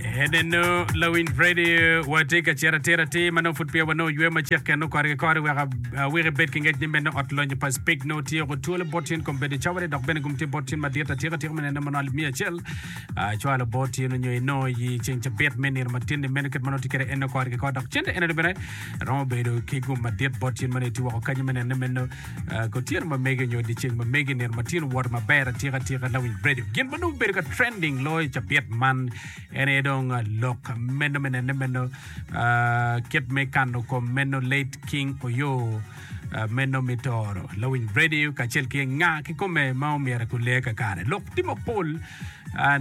Enenu lawiny redio wa tye ka cito atira atir ma nongo pud peya wanongo ywe ma cek kene okori ki kori wek awek ibed ki ngec ni meno ot lonyo pa Speke nongo tye ko twolo bot cwiny kom bedo cawale dok bene gum tye bot cwiny madit atika atika me neno manongo alip miya acel acwalo bot cwiny onyo inongo i ceng cabit me nino matin ni meno kit manongo tye kede ene okori ki kori dok cente enenu bene romo bedo ki gum madit bot cwiny manongo itye woko kanyo me neno ni meno Ko tyeno ma mege nyo dyeceng ma mege nino ma tye luwot maber atika tika lawiny redio. Gin ma nongo bedo ka trending loyo i cabit man en aye dong lok meno me nene meno kit me kano kom meno late King Oyo meno me toro lawiny redio kacel ki nga kikome ma omyero ekule kakare. Lok tye mapol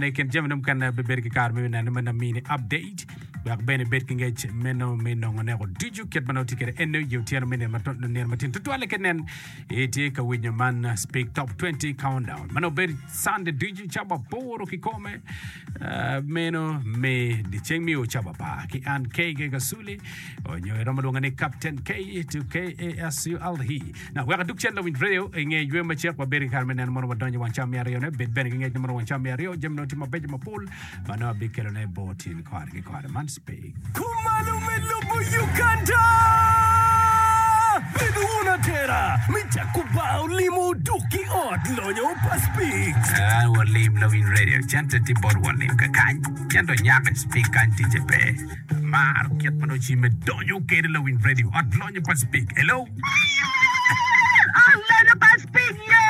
ne kin jami ne mukene bebedo ki kare me nene meno mini update. Wek bene ibed ki ngec meno me nongo neko ducu kit ma nongo itye kwede ene i otyeno me nino matino tutwalle ki nen itye ka winyo man Speak Top 20 Countdown ma nongo bedo Cande ducu ca waporo kikome ah, meno me dyeceng me o ca wapar ki an KK Kasuli onyo iromo lwonga ni Captain K to KASULE Dok wek adug cente owinj ryeyo i nge jwe macek, wabedo ki kare me neno mono wadonyo i wang cam me aryone. Bed bene ki ngec ni mono wang cam me aryo jami nongo tye mabeco mapol ma nongo abikelone bot in kare ki kare. Man Speke. Kumalo me lubo Uganda! Bed wun atera me jako bar olimo oduk ki ot lonyo pa Speke. An walim lawiny radio cente tye bot walim kakany cente onyak speke kany ticce pe. Amaro kit ma nongo cimme donyo kede lawiny radio ot lonyo pa Spik. Hello. Ot lonyo pa Spik ye.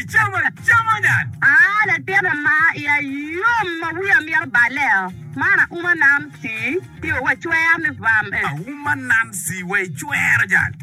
Icamo camo nyat. Ah latin ama iya yom ma wiya mito baleo man auma nam tii. Tio wa cwer me bam eh. Auma Nancy wa i cwero jang.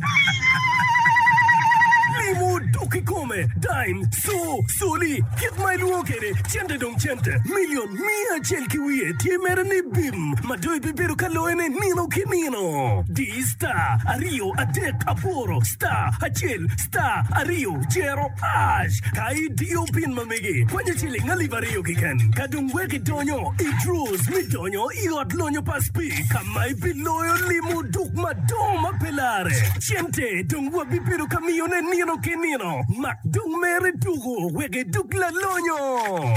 Limo dok ikome, dime, co, coli, kit ma ilwongo kede cente dong cente, million miya acel ki wiye tye mere ni bim ma do ibibedo ka loye ne nino ki nino. Di star aryo adek aboro star acel star aryo cero ash ka idiyo pin ma megi konyi ciling alip aryo kiken ka dong wek idonyo i draws me donyo nyo i Ot Lonyo pa Speke ka ma ibiloyo limo duk madongo ma pe larre. Cente dong wabibedo ka miyone nino ki nino, mak dong mere tuko wek idug lalonyo.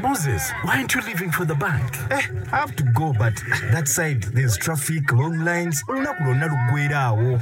Moses, why aren't you leaving for the bank? Eh, I have to go but that side there's traffic, long lines, olunaku lwonna lugwera awo.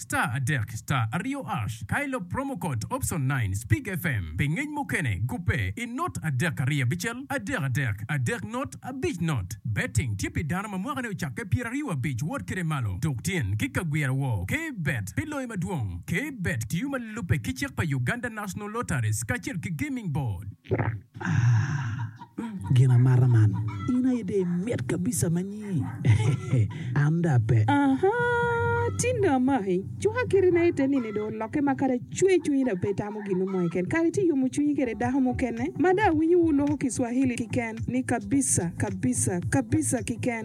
Star adek star aryo ash ka ilo promo code option nine speak FM pi ngec mukene gubbe i not adek ariyo abicel adek adek adek not abic not betting tye pi dano ma mwaka ne ocakke pyera aryo abic wot kede malo tuk tyen ki ka gwira woo ke bet pi loyo madwong ke bet tiyo ma lube ki cik pa Uganda national lotteries kacel ki gaming board. Gin amata man. In aye dong imit kabisa ma nyi. An dong ape. Aha! Tin dong amaki. Cuka kiti na ite nini dong olokke ma kadi acwe cwinyi dong pe itamo gin mo keken. Kadi ci iyomo cwinyi kede dako mukene ma dong awinyo wuloko Kiswahili kiken ni kabisa, kabisa, kabisa kiken.